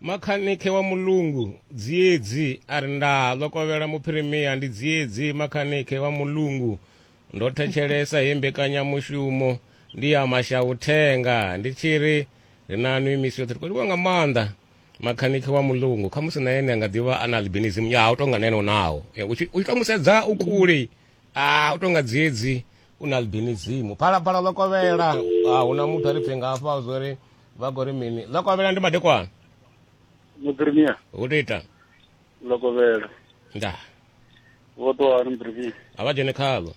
Makhanike wa mulungu dziedzi a ri ndaa ḽo kovhela muphirimiya ndi dziedzi makhanike wa mulungu ndo thetshelesa he mbekanyamushumo ndi ya mashauthenga ndi tshi ri ri na nwi misi yoṱhe ri khou livhuwa nga maanḓa makhanike wa mulungu khamusi na ene a nga ḓivha a na albinism ya u tonga na ene u naho eh, u tshi tou musedza u kule a u tonga dziedzi u na albinism phalaphala ḽo kovhela a hu na muthu a ri pfe nga afha zwo ri vha khou ri mini ḽa kovhela ndi madekwana mupremia hu tou ita ḽa kovhela nda vho ṱuwa hani mupremia a vha dzhene khaḽo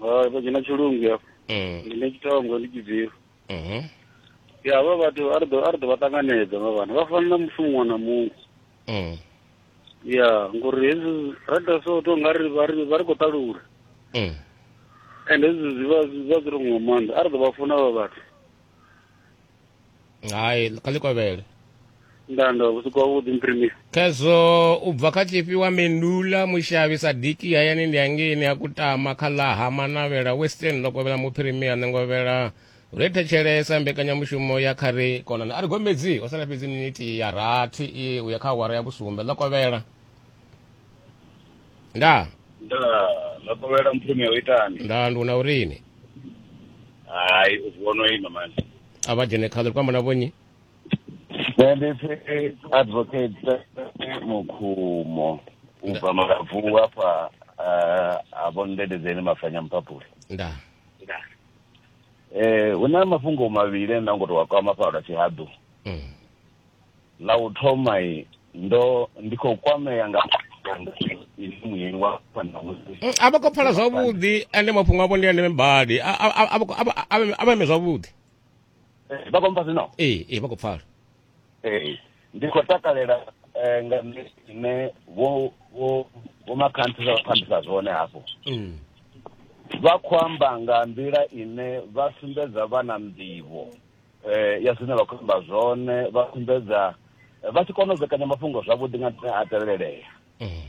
hai vha dzhena tshilungu hafho mm. ndi ne tshithongo ndi tshibviro mhm. ya vha vhathu a ri ḓo a ri ḓo vha ṱanganedza vha vhana vha fana na mufu muṅwe na muṅwe mm. ya ngori hezwi ra ita so to nga ri vha ri vha ri khou ṱalula mm. and hezwi zwi vha zwi vha zwi ri nga maanḓa a ri ḓo vha funa vha vhathu hai kha ḽi kovhele ndanda vhusiku havhuḓi mprimisi khezwo u bva kha tshifhi wa mendula mushavhi sa diki hayani ndi hangeini a kutama kha ḽa ha manavhela western ḽo kovhela muphirimia ṋengovhela ri thetshelesa mbekanyamushumo ya kha ri konana a ri gombedzi ho sala fhedzi miniti ya rathi i uya kha awara ya vhusumbe ḽo kovhela ndaa ndaa lakovhela mpumi o itani ndaa nduna urini hai uvono ima manje a vha dzhene khaḽo ri kwamba na vhonyi nṋe ndi pfi advocate mukhumo u bva malabvu afha eh, a vho ndendedzeni mafanya mpapule ndaa eh hu na mafhungo mavhili nda ngo to wa kwama fhala tshihaḓu mm. Ḽa u thoma i ndo ndi khou kwamea nga ini muyeni wa fanamusi mm, a vha khou pfala zwavhuḓi ende mafhungo avho ndi a ndeme badi a vha ime zwavhuḓi eh, vha khou mpha zwino ee ee vha khou pfala ee ndi khou takalela eh, nga ine vho vho vho makhanthu vha phandisa zwone hafho mm. vha khou amba nga nḓila ine vha sumbedza vha na nḓivho eh, ya zwine vha khou amba zwone vha sumbedza eh, vha tshi kona u vhekanya mafhungo zwavhuḓi nga nṱhani a tevhelelea eh.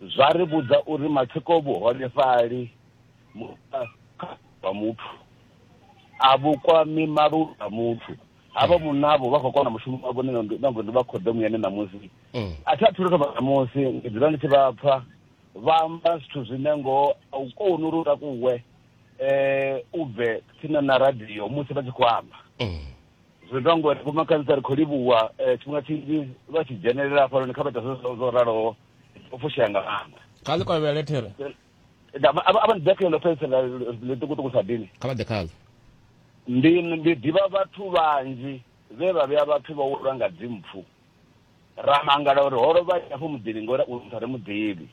zwa ri vhudza uri matsiko vhuholefhali wa muthu a vhukwami maluvhi a muthu havha mm. munavho vha khou kona mushumo wavho nango ndi vha khoḓomu yane ṋamusi mm. a thi a thu lutho ṋamusi ndi dzula ndi tshi vha pfa vha amba zwithu zwine ngoho a u koni uri u takuwe eh u bve tsini na radio musi vha tshi khou amba Mm. zwi ita ngori vhomakhadzi ri khou livhuwa eh, tshifhinga tshinzhi vha tshi dzhenelela hafhanoni kha vha ita zwo zwo raloho u fushea nga maanḓa kha ḽi kovhele there Nda- ava- ava ndi dakhe ḽo fhedzisela ḽiṱukuṱuku sa dini kha vha ḓe khaḽo ndi ndi ḓivha vhathu vhanzhi vhe vha vhea vhathu vha ulwa nga dzimpfu Ra mangala uri ho lovha nnyi afho muḓini ngori u ri mu ḓivhi.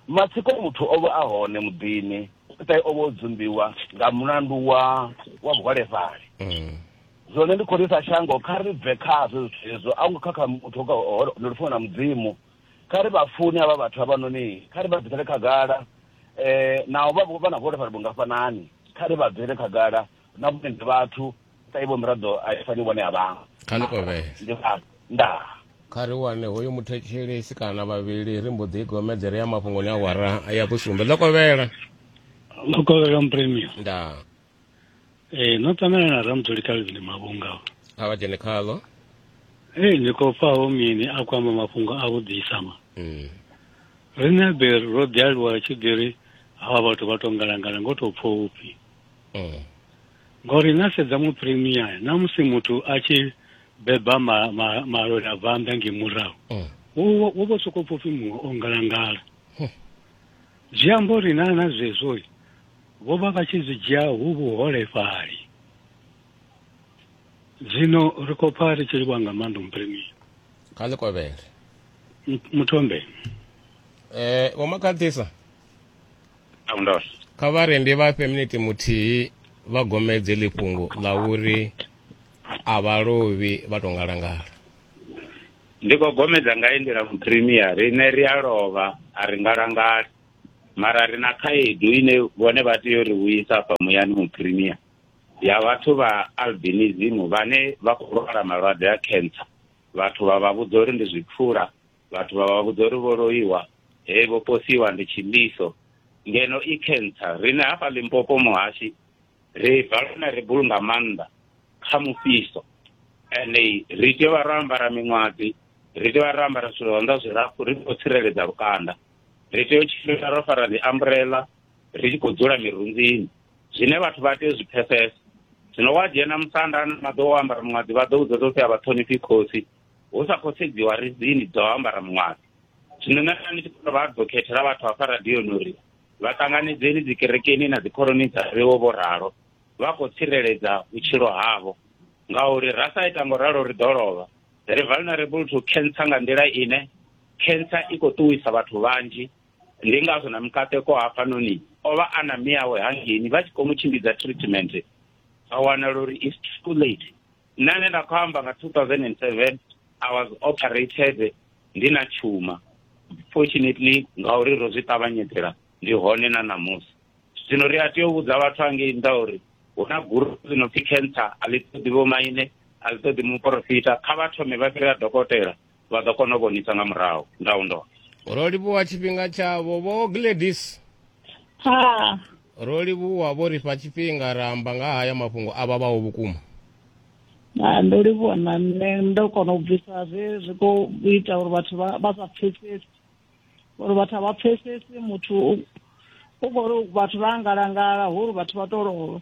Matsiko muthu o vha a hone muḓini, fhedzi o vha o dzumbiwa nga mulandu wa wa vhuholefhali. Zwone ndi khou ri sa shango kha ri bve khazwo zwithu hezwo, a hu ngo kha kha muthu ndi lufuno na Mudzimu. Kha ri vha fune havha vhathu havhanoni, kha ri vha bvisele khagala naho vha vha na vhuholefhali vhungafhanani, kha ri vha bvisele khagala na vhone ndi vhathu sa ivo miraḓo a i fani vhone a vhaṅwe kha ni kovhele ndi vhathu ndaa kha ri wane hoyu muthetshelesi kana vhavhili ri mbo ḓi i gomedzere ya mafhungoni a wara ya vhusumbe ḽo kovhela ḽo kovhela mpremio ndaa ee no ṱangana na ramtholi calvin mavhunga kha vha dzhene khaḽo ee ni khou pfaho mini a khou amba mafhungo a vhuḓisa ma mm. riṋe be ro ḓi aluwa tshi ḓi ri hawa vhathu vha tou ngalangala ngo tou pfha upfhi eh. ngori na sedza mu premier na musi muthu a tshi beba ma, ma, malori a bvanda nge murahu eh. wo vho soko pfupfi muṅwe o ngalangala eh. zwi amba uri na na zwezwo vho vha vha tshi zwi dzhia hu vhuholefhali zwino ri khou pfa ri tshi livha nga maanḓa mupremier kha ḽi kovhele muthombe eh vho makhathisa kha vha rende vha fhe miniti muthihi vha gomedze ḽifhungo ḽa uri a vha lovhi vha to ngalangala ndi khou gomedza nga endela mupremier rine ri a lovha a ri ngalangala mara ri na khaedu ine vhone vha tea uri vhuyisa afha muyani mupremier ya vhathu vha albinism vhane vha khou lwala malwadze a cancer vhathu vha vha vhudza uri ndi zwipfula vhathu vha vha vhudza uri vho loiwa he vho posiwa ndi tshimbiso ngeno i cancer rine hafha limpopo muhashi ri bva lune ri bulunga maanḓa kha mufhiso ende ri tea vha ro ambara miṅwadzi ri tea vha ro ambara zwithu zwanḓa zwilapfu ri khou tsireledza lukanda ri tea u tshimbila ro fara dzi ambrela ri tshi khou dzula mirunzini zwine vhathu vha tea u zwi pfesesa zwino wa dzhena musanda na maḓo wo ambara muṅwadzi vha ḓo vhudza ḓo pfi a vha ṱhonifhi khosi hu sa khou sedziwa rizini dzo ambara muṅwaḓi zwino nṋe nda ndi tshi khou vha ḓo khethela vhathu hafha radioni uri vha ṱanganedzeni dzikerekeni na dzikhoroni dza vhewo vho ralo vha khou tsireledza vhutshilo havho ngauri ra sa ita ngo ralo ri ḓo lovha ri vulnerable to cancer nga nḓila ine cancer i khou ṱuwisa vhathu vhanzhi ndi ngazwo na mukateko hafhanoni o vha a na miyawe hangeni vha tshi khou mu tshimbidza treatment vha wanala uri is too late nṋe ane nda khou amba nga 2007 i was operated ndi na tshuma fortunately ngauri ro zwi ṱavhanyedzela ndi hone na ṋamusi zwino ri a tea u vhudza vhathu angei nnḓa uri hu na guru ḽi no pfi cancer a ḽi ṱoḓi vhomaine a ḽi ṱoḓi muporofita kha vha thome vha fhirela dokotela vha ḓo kona u vhonisa nga murahu ndau ndo ro livhuwa tshifhinga tshavho vho gladis ha ro livhuwa vho ri fha tshifhinga ra amba nga haya mafhungo a vhavhaho vhukuma ndo livhuwa na nṋe ndo kona u bvisa zwe zwi khou ita uri vhathu vha sa pfesesi uri vhathu a vha pfesesi muthu u khou ri vhathu vha angalangala hu uri vhathu vha to lovha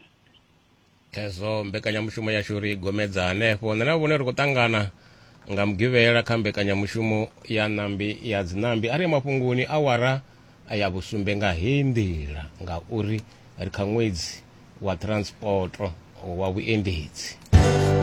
Hezwo mbekanyamushumo yashu ri gomedza hanefho. Nṋe na vhone ri khou ṱangana nga mugivhela kha mbekanyamushumo ya ṋambi ya dziṋambi a ri ya mafhungoni awara ya vhusumbe nga heyi nḓila ngauri ri kha ṅwedzi wa transporto wa vhuendedzi.